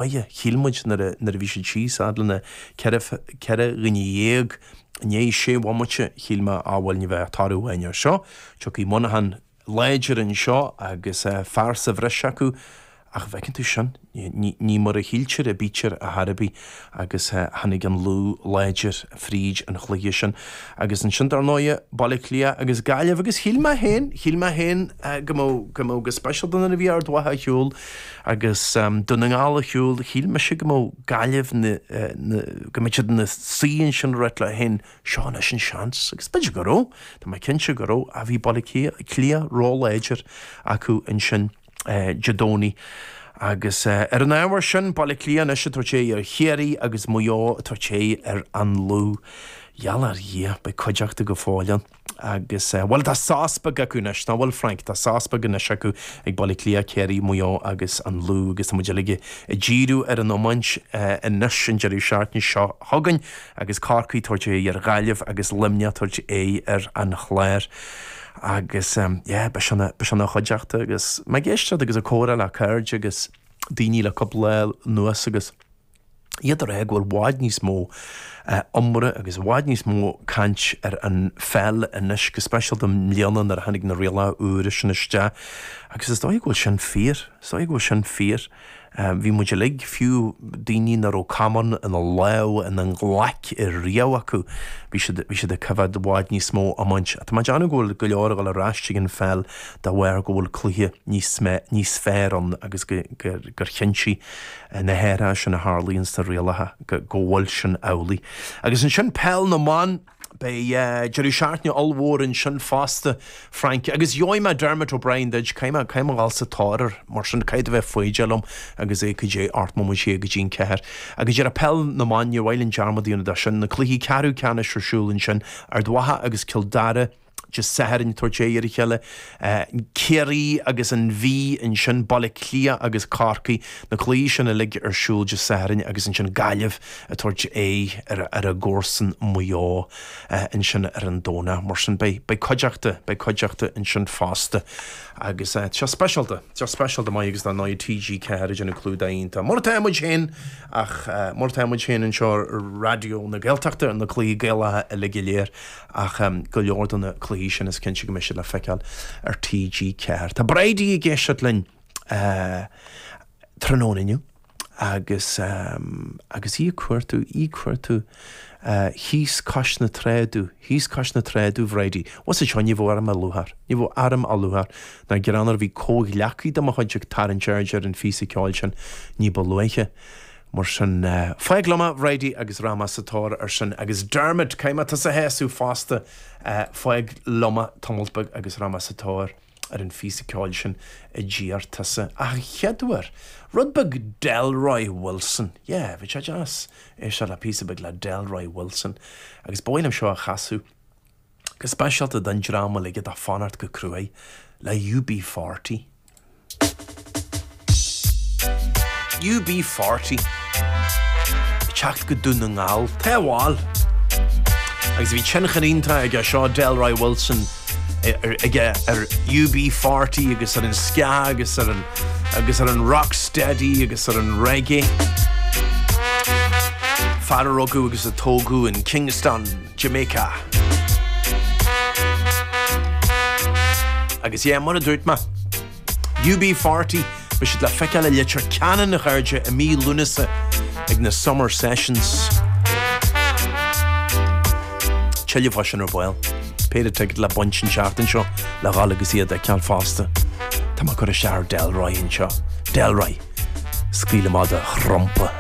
Aidhe, shíl muid nuair a bhí siad thíos fhad le na ceithre, ceithre dhuine dhéag i ndiaidh sé bhomaite, shíl mé, á bhuel ní bheidh ach toradh amháin ar seo, tiocfaidh Muineachán láidir anseo agus fear sa bhreis acu ach an bhfeiceann tú sin, ní mar a shíltear a bítear ar chor ar bith agus tháinig an Lú láidir. fríd an chluiche sin. Agus ansin, dar ndóigh, Baile Átha Cliath agus Gaillimh. Agus shíl mé féin, shíl mé féin go mbeadh, go mbeadh, go speisialta nuair a bhí Ard Mhacha ar shiúl agus Dún na nGall ar shiúl, shíl mise go mbeadh Gaillimh na, na, go mbeadh siad ina suí ansin ag ráit leo féin, seo anois an seans. Agus b'fhéidir go raibh, tá mé cinnte go raibh, ach bhí Baile Átha Cliath róláidir acu ansin. Dé Domhnaigh. Agus ar an ábhar sin, Baile Átha Cliath anois ag tabhairt aghaidh ar Chiarraí agus Maigh Eo ag tabhairt aghaidh ar An Lú. Gheall ar Dhia, beidh cuideachta go fóill ann. Agus, bhuel, tá sos beag acu anois, nach bhfuil, Frank? Tá sos beag anois acu ag Baile Átha Cliath, Ciarraí, Maigh Eo agus An Lú agus tá muid uilig ag díriú ar an iomáint anois an deireadh seachtaine seo chugainn agus Corcaigh ag tabhairt aghaidh ar Ghaillimh agus Luimneach ag tabhairt aghaidh ar an Chlár. Agus yeah, ba sin a, ba sin an chuideachta agus mé ag éisteacht agus ag comhrá le cairde agus daoine le cúpla lá anuas agus iad ag rá go bhfuil i bhfad níos mó iomrá agus i bhfad níos mó caint ar an pheil anois, go speisialta i mbliana nuair a tháinig na rialacha úra sin isteach. Agus is dóigh go bhfuil sin fíor, is dóigh go bhfuil sin fíor. Bhí muid uilig, fiú daoine nach raibh camán ina lámh, ina nglaic i riamh acu, bhí siad, bhí siad ag coimheád i bhfad níos mó iomáint. Tá mé ag déanamh go bhfuil go leor ag dul ar ais ag an pheil dá bharr go bhfuil cluiche ní, níos fearr ann agus gur, gur chinntigh na hathruithe sin a tharlaigh ins na rialacha go bhfuil sin amhlaidh. Agus ansin peil na mban. Beidh deireadh seachtaine ollmhór ansin fosta, Frank, agus gheobhaidh mé Dermot O'Brien duit. Caithfidh mé a dhul sa tóir air, mar sin, caithfidh tú bheith foighdeach liom agus é caidé ocht mbomaite go dtí an ceathair. Agus dhera, peil na mban, níor mhaith linn dearmad a dhéanamh de sin, na cluichí ceathrú ceannais ar siúl ansin, Ard Mhacha agus Cill Dara, Dé Sathairn, ag tabhairt aghaidh ar a chéile Ciarraí agus an Mhí, ansin Baile Átha Cliath agus Corcaigh, na cluichí sin uilig ar siúl Dé Sathairn agus ansin Gaillimh ag tabhairt aghaidh ar a gcomharsain Maigh Eo ansin ar an Domhnach. Mar sin beidh cuideachta, beidh cuideachta ansin fosta agus seo speisialta, seo speisialta maith agus dar ndóigh TG4 ag déanamh clúdach iontach. Mar atá muid féin ach mar atá muid féin anseo ar Raidió na Gaeltachta ar na cluichí Gaelacha uilig go léir Ach go leor de na cluichí sin is cinnte go mbeidh siad le feiceáil ar TG4. Tá Bridie ag éisteacht linn tráthnóna inniu agus agus í ag cuartú, í ag cuartú thíos cois na trá domh, thíos cois na trá domh, a Bhridie. Ó sa tSeoighín, ní bheadh orm ach lúcháir, ní bheadh orm ach lúcháir ná gráinear a bhí comhghleacaí de mo chuid ag tarraingt airde ar an phíosa ceoil sin ní ba luaithe. Mar sin, fág liom é, a Bhridie, agus rachaidh mé sa tóir air sin, agus Dermot, caithfidh mé tusa a shásamh fosta, fág liom é tamalt beag agus rachaidh mé sa tóir ar an phíosa ceoil sin a d'iarr tusa, ach a chéaduair, rud beag Delroy Wilson, yeah, bheadh sé deas éisteacht le píosa beag le Delroy Wilson, agus ba mhaith liom seo a chasadh, go speisialta don dream uilig atá ag fanacht go cruaidh le UB40. UB40 ag teacht go Dún na nGall, tá, bhuel, agus bhí tionchar iontach aige seo Delroy Wilson aige ar UB40 agus ar an ska agus ar an agus ar an rocksteady agus ar an reggae. Fear a rugadh agus a tógadh in Kingston, Jamaica. Agus yeah, mar a dúirt mé. UB40, beidh siad le feiceáil i Leitir Ceanainn, a chairde, i mí Lúnasa ag na Summer Sessions. Tuilleadh faoi sin ar ball. Péire ticéad le baint an seachtain seo le dhul agus iad a fheiceáil fosta. Tá mé ag cur isteach ar Delroy anseo. Delroy. Scaoil amach do thrumpa.